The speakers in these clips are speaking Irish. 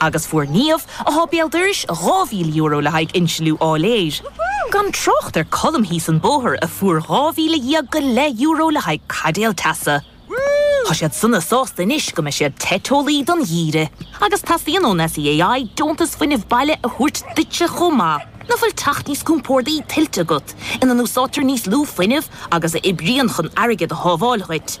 Agus fuair Niamh, atá béal dorais, dhá mhíle euro le haghaidh insliú áiléir. Gan trácht ar Colm thíos an bóthar, a fuair dhá mhíle dhéag go leith euro le haghaidh caidéal teasa. Tá siad sona sásta anois go mbeidh siad te teolaí don gheimhreadh. Agus teastaíonn ón SEAI deontas fuinnimh baile a thabhairt duitse chomh maith. Ná fuil teach níos compórdaí tuillte agat, ina n-úsáidtear níos lú fuinnimh agus a oibríonn chun airgead a shábháil dhuit?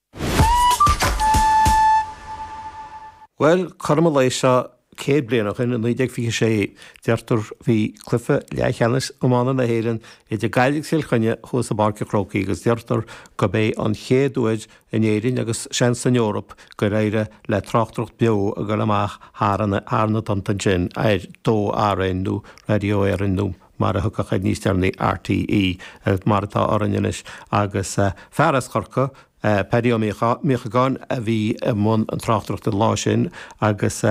Bhuel, cothrom an lae seo céad bliain ó shin, i 1926, deirtear, bhí cluiche leathcheannais iomána na hÉireann idir Gaillimh agus Cill Chainnigh thuas i bPáirc a' Chrócaigh agus deirtear gurb é an chéad uair in Éirinn agus seans san Eoraip gur éirigh le tráchtaireacht beo a chur amach thar na tonnta ansin ar 2RN nó Raidió Éireann nó mar a tugadh air níos deireanaí, RTÉ, mar atá orainn anois, agus fear as Corcaigh, Paddy Ó Míochagáin, a bhí i mbun an tráchtaireacht an lá sin, agus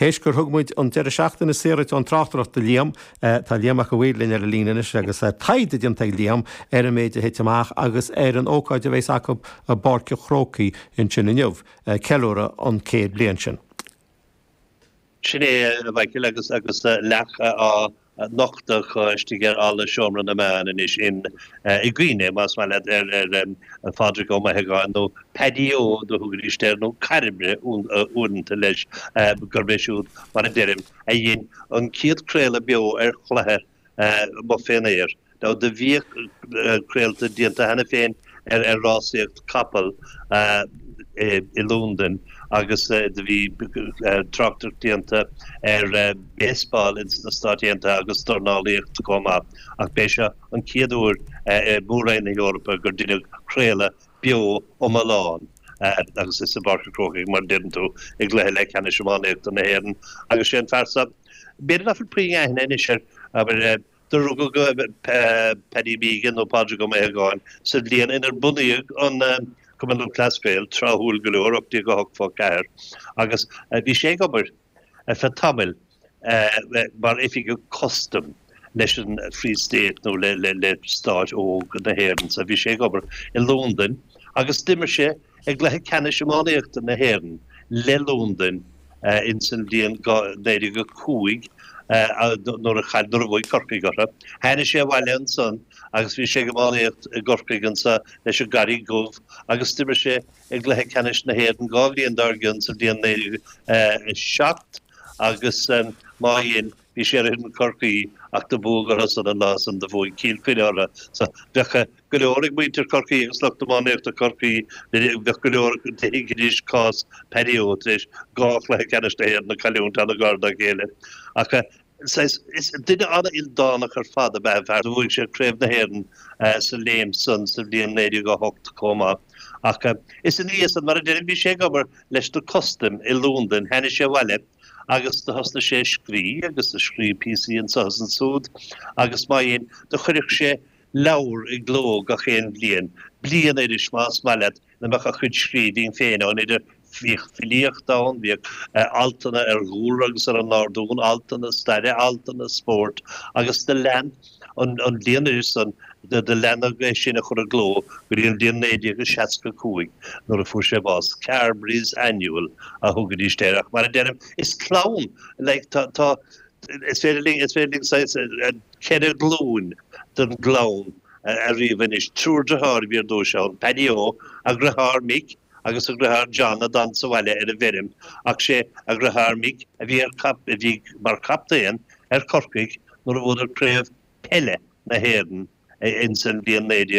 théis gur thug muid an deireadh seachtaine saor ón tráchtaireacht do Liam, tá Liam Mac a' Mhaoir linn ar an líne anois, agus taighde déanta ag Liam ar an méid a thit amach, agus ar an ócáid a bheas acu i bPáirc an Chrócaigh ansin inniu, ceiliúradh an céad bliain sin. Sin é, a Mhichíl, agus leac á. nochtadh istigh ar Fhalla Seomra na Meán anois in i gcuimhne, más maith leat, ar ar Phádraig Ó Maothagáin nó Paddy Ó do thugaidís air nó Cairbre uaireanta leis gurb é siúd, mar a deirim, a dhein an chéad craoladh beo ar chluiche amuigh fén aer Now do bhíodh craolta déanta cheana féin ar rásaíocht capall i Londain agus do bhí tráchtaireacht déanta ar baseball ins na Stáit Aontaithe agus dornálaíocht chomh maith ach b'é seo an chéad uair i Mór-Roinn na hEorpa gur deineadh craoladh beo iomlán agus is i bPáirc a' Chrócaigh mar deireann tú i gCluiche Leathcheannais Iománaíochta na hÉireann agus sé an fear seo b'fhéidir nach bhfuil puinn aithne anois air abair Do rugadh Paddy Mehigan, nó Pádraig Ó Maothagáin, sa bhliain inar bunaíodh an Cumann Lúthchleas Gael, tráthúil go leor, 1884, agus bhí sé ag obair ar feadh tamaill mar oifigeach custaim leis an Free State nó le stát óg na hÉireann. Bhí sé ag obair i Londain agus d'imir sé. I gCluiche Ceannais Iománaíochta na hÉireann le Londain insan bhliain 1905 nuair a chaill nuair a bhuaigh Corcaigh orthu. Tháinig sé abhaile ansan agus bhí sé ag iománaíocht i gCorcaigh ansan leis an gCarraig Dhubh agus d'imir sé i gCluiche Ceannais na hÉireann dhá bhliain dár gcionn sa bhliain 1907 agus má dhein bhí sé ar fhoireann Chorcaí ach do buadh orthusan an lá san do bhuaigh Cill Chainnigh orthu so bheadh go leor ag muintir Chorcaí agus lucht iománaíochta Chorcaí nuair a bheadh go leor acu a thuigeann anois cás Paddy Ó tar éis dhá chluiche ceannais na hÉireann a chailliúint an-ghar dá chéile ach saghas is duine an-ildánach ar fad ab ea an fear bhuaigh sé Craobh na hÉireann sa léim san sa bhliain 1908 chomh maith ach is ina dhiaidh san mar a deirim bhí sé ag obair leis na custaim i Lúndain tháinig sé abhaile agus do thosnaigh sé ag scrí agus do scríobh píosaí anso is ansúd agus má dhein do chuireadh sé leabhar i gcló gach aon bhliain, bliainiris, más maith leat, ina mbeadh a chuid scríbhinn féin ann idir Bhíodh filíocht ann, bhíodh altanna ar dhúlra agus ar an ngárdún, altanna staire, altanna spóirt agus do lean an bhliainiris san, do leanadh é sin a chur i gcló go dtí an bhliain 1965 nuair a fuair sé bás. Carbery's Annual a thugaidís air ach mar a deirim, is clann, like, tá, tá, Is féidir linn saghas ceithre ghlúin den gclann a ríomh anois, triúr dritheár a bhí ar dtúis ann, Paddy Ó, a dhritheár Mick, agus a dhritheár John a d'fhan sa bhaile ar an bhfeirm, ach is é a dhritheár Mick a bhí mar chaptaen ar Chorcaigh nuair a bhuadar craobh peile na hÉireann ins an bhliain 1900.